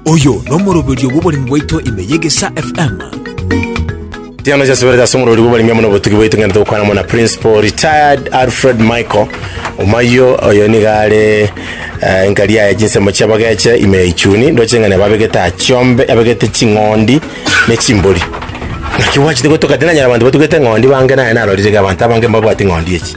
Oyo nomoroberio bw'oboremi bwaito ime y'Egesaa FM. Tiano chasubera chase omorori bw'oboremi amo nobotugi bwaito ng'ende togokwana amo na principal retired alfred michael omayo oyo niga are eh, nkari yaye chinsemo chiabageche ime ya ichuni ndoche ng'a nababegete achiombe abegete ching'ondi ne chimbori naki gwachete gotoka tinanyara abanto batugete ng'ondi bange naye narorire ga abanto abange mbabwati ng'ondi echi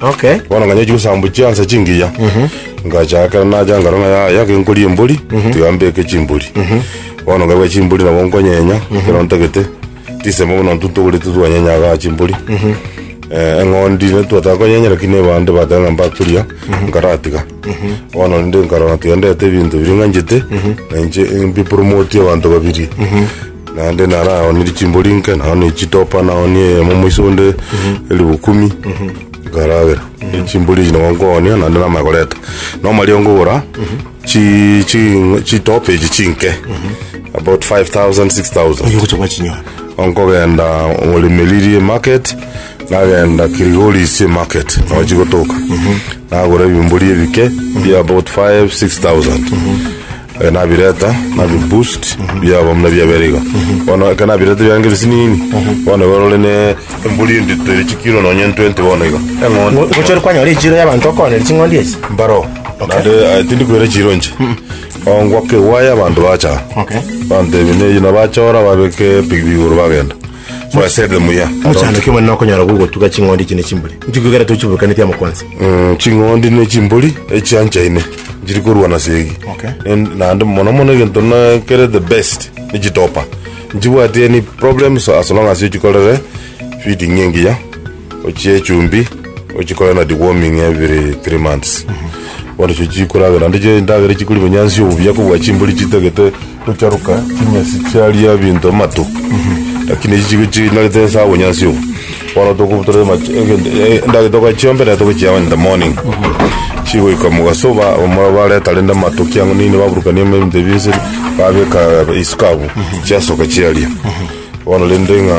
Okay. bono nganya chigosambu chiansa chingiya ngachakera nacha ngaro ng'a ya- yake nkoria embori tiga mbeke chimbori bono nkaruga chimbori nabo nkonyenya ekero ntagete chisemo buna ntwe ntogorete twanyenya igaa chimbori Eh, eng'ondi ne twataka konyenya lakini ebande bateba ng'a mbaturia nkaratiga bono rende nkarora tiga ndete ebinto biria ng'anchete nainche mbipromotie abanto babiri Naende naraonirie chimbori inke, naonia chitopa, naonia eyemo moiso onde elifu kumi, ekaragera. Chimbori echi nabo nkoonia, naende namanya koreta. Na amariogo nkogora, chi- chi- chitopa echi chinke, about 5000, 6000. Oyo ogocha gwachinyora. Nkogenda Orimiri market, nagenda Kilgoris market, nabo chigotoka. Nagora ebimbori ebike, bia about 5, 6000. Eh, nabireta nabiboost byaba muna byabere iga bono eke nabireta byange bisinini bono borore ne emburi endito ere chikiro nonye 20 bono iga eng'ondi gochori kwanyora echiro y'abanto okonera ching'ondi echi mbaro nande eh, tindi kwera chiro nche ongwaka ewaya abanto bacha Okay. bantebi neyi nabachora babeke pigipigi igoro bagenda Mwasebe muya. Omochando oke omonene okonyora gogotuga ching'ondi echi ne chimbori. Inchuko igere tochiburukaneti amo kwansa. Mm, ching'ondi ne chimbori echianchaine nchiri korwana segi Okay. En- naende mono mono egento na kere the best ni chitopa nchibwati any problems as long as ochikorere feeding engiya ochie echumbi ochikore na deworming every three months bono echo chikoragera naende chire endagera chikori bonyansi obuya kobua chimbori chitagete gocharuka chinyasi chiaria ebinto amatu lakini echi chigo chinarete ase obonyansi obo bono tokobutora amache egento endagera togachiombe naende togochiama in the morning chigoika mogaso oba omorero bareta rende amato ki ang'u nini baburukania ime ebinto ebinse babeka isuka abwo chiasoka chiaria bono rende ng'a.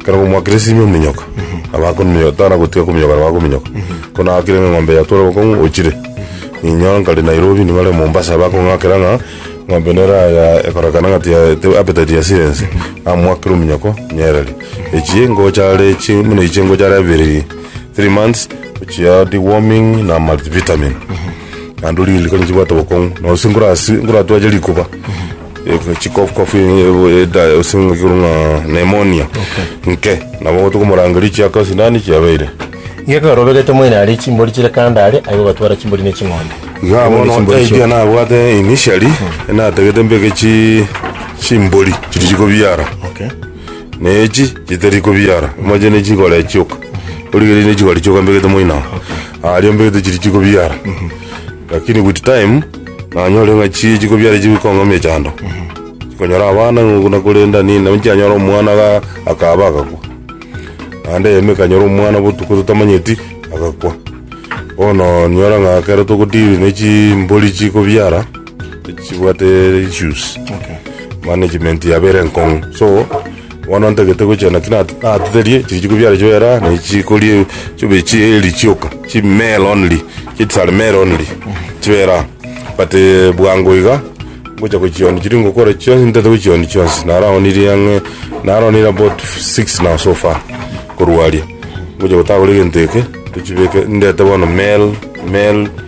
Ekero omwakristo ime ominyoka, nabo akominyoka, tana gotiga kominyoka nabo akominyoka. Ko nagakire ng'a eng'ombe yatware obokong'u, ochire. Ninyora nkare Nairobi, nigo are Mombasa, bakong'akera ng'a eng'ombe nere ya- ekorekana ng'a tiya- te- appetite yasire ense. Namwakire ominyoko, nyereri. Echi engocha are echi, buna echi engocha are abere, three months, ochia deworming na multivitamin. Naende oriri riko nichibwate obokong'u, nonye gose nkorasi- nkoratwache rikuba. chikofu kofu eda ase ng'a ekerwe ng'a pneumonia nke nabo ogote komorangeria chiaka esinani chiabeire Geka orobegete moino aria chimbori chire kando aria, aye ogatwara chimbori ne ching'ondi. Iga Aye bono chimbori idea chi'oka. nabwate initially natagete mbeke chi chimbori chiri chikobiara Okay. na echi chitari kobiara moche ne chikore chioka origereire ne chikore chioka mbegete moino ago aria mbegete chiri chikobiara Lakini with time nanyore ng'a chii chikobiare chigokong'amia chando chikonyora abana ng'a okuna korenda nini nabo nchianyora omwana ga akaba agakwa naende eyemo ekanyora omwana botuko totamanyeti agakwa bono onyora ng'a ekero togodiri ne chimbori chikobiara chibwate issues management yabo ere enkong'u so. Bono ntagete gochia naki na- natoterie chirichiko biane chio era ne chiko rie chio bi- chie eri chioka chi male only chi tsare male only chibera but eh, bwango iga ngocha gochioni chiri ngokora chionsi ntete gochioni chionsi naraonirie ang'e naraonirie about six now so far korwa aria ngocha gotagora egento eke tochibeke ndete bono male male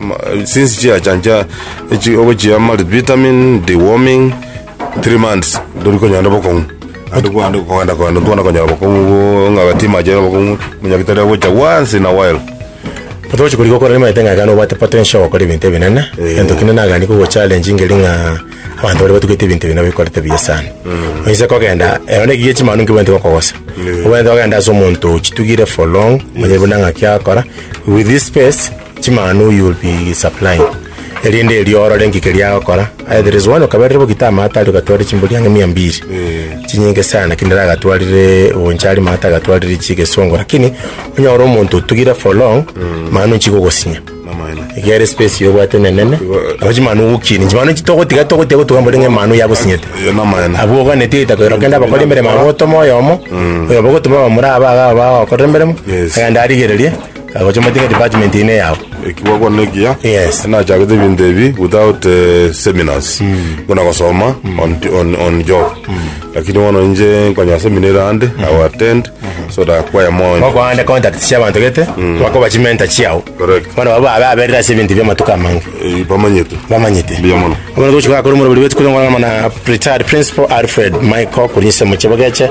Ma- since chiachancha echi- ogochia multivitamin deworming three months ndori konyara bokong'u ande kwande kogenda kogenda ntwana konyara bokong'u bo- ng'a gati mache are bokong'u monyagitari agocha once in a while Otogochia korigwa okore nimaete ng'a ekero nobwate potential ya gokora ebinto ebinene Eh. egento kinde nagani kogochallenge ngeri ng'a abanto baria batugete ebinto ebi nabo bikorete buya sana oise kogenda ero nekiya echi manu nkibaete gokogosa Eh. obwenerete ogenda ase omonto ochitugire for long manya buna ng'aki akora with this space Chimanu you will be supplying erinde erio orore inki keria agokora either there is one okaberire bogi tama ata aria ogatwarire chimbori ang'e mia mbiri chinyinge sana lakini nere agatwarire oboinche aria mata agatwarire chigesongo lakini onyore omonto otugire for long manu inchi gogosinya Amana. iga ere space iga obwate enenene nabo chimanu ogokini chimanu inchi togotiga togotiga gotuga mbori ng'a manu yagosinyete Iyo ni amana. abwo oganeti goita koira kende abakora emeremo abwo otoma oyomo oyo bogotoma bamurabe aga bagokorera emeremo Yes. agende arigererie Agocha motinga department eye neyao. ekiwa kwa nekiya Yes. nachagete ebinto ebi without eh, seminars buna gosoma on, on, on job lakini bono inche nkonya semina ere ande i will attend so that kwaya moyo Bakoande contact cia bantu gete. Bakoba chimenta chiao. Correct. Bana baba abe aberera ase ebinto bia matuko amange. Eh, bamanyete Bamanyete. Mbuya mono. Abana gochika kuri muri buri betu kuri ngwana mana retired principal Alfred Michael kuri nse muche bogeche